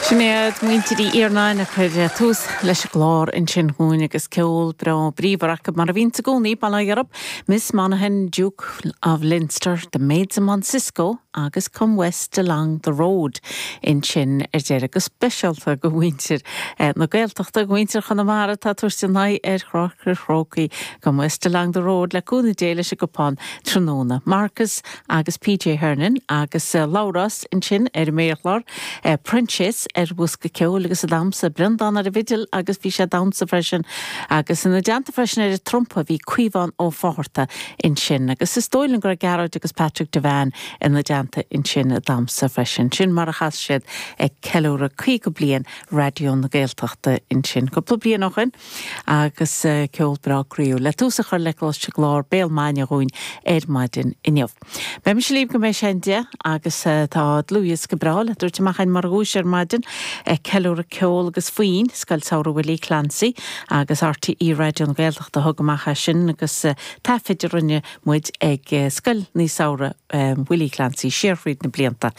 Sin iad Muintir Uí Iarnáin a chuir tús leis an gclár ansin dhúinn agus ceol breá bríomhar acu mar a bhíonns i gcónaí, Bal Ag Arraib, Miss Monaghan, Duke of Leinster, The Maids of Mount Cisco agus Come West Along the Road ansin ar deireadh. Go speisialta go mhuintir na Gaeltachta, go mhuintir Chonamara atá ag tabhairt a n-aghaidh ar Pháirc an Chrócaigh, Come West Along the Road le cúnamh Dé leis an gcupán tráthnóna. Marcus. agus P. J. Hernon agus Labhrás ansin ar an méarchlár, Proinsias ar bhosca ceoil agus sa damsa, Breandán ar an bhfidil agus bhí sé ag damhsa freisin, agus ina dteannta freisin ar an trumpa bhí Caomhán Ó Fátharta ansin, agus is dóigh liom go raibh Gearóid agus Patrick Devane ina dteannta ansin ag damhsa freisin. Sin mar a chas siad ag ceiliúradh 50 bliain Raidió na Gaeltachta ansin cúpla bliain ó shin. agus ceol breá croíúil le tús a chur le clár Béal Maidine dhúinn ar maidin inniu. Beidh mise libh go mbeidh sé an deich agus tá dlúthdhiosca breá le tabhairt amach againn mar dhuais ar maidin ag ceiliúradh ceol agus foinn ó Scoil Samhraidh Willie Clancy agus RTÉ Raidió na Gaeltachta a thug amach é sin agus taifid a rinne muid ag Scoil Samhraidh Willie Clancy siar thríd na blianta.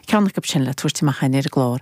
Ceann acu sin le tabhairt amach againn ar an gclár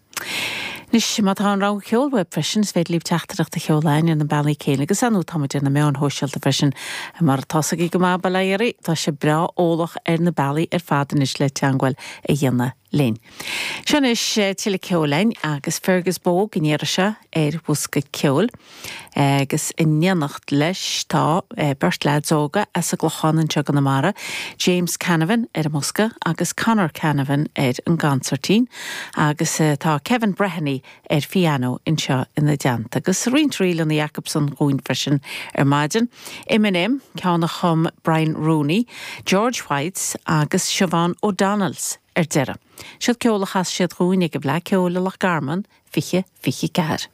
Anois, má tá an rogha ceoil uaibh freisin, is féidir libh teachtaireacht a sheoladh chugainn ar na bealaí céanna, agus ar ndóigh táimid ar na meáin shóisialta freisin. Mar atá a fhios agaibh go maith, bail ó Dhia oraibh, tá sibh breá eolach ar na bealaí ar fad anois le teangmháil a dhéanamh linn. Seo anois tuilleadh ceoil againn, agus Fergus Bogue an iarraidh seo ar Bhosca Ceoil. agus in éineacht leis tá beirt leads óga as an gClochán anseo i gConamara, James Canavan ar an mbosca agus Conor Canavan ar an gcansairtín, agus tá Kevin Breheny ar phianó anseo ina dteannta. Agus roinnt ríleanna acu seo dhúinn freisin ar maidin, M and M, ceann a chum Brian Rooney, George Whites agus Siobhán O'Donnells ar deireadh. Seod ceol a chas siad dhúinn ag an bhFleadh Ceoil i Loch Garman, 2024.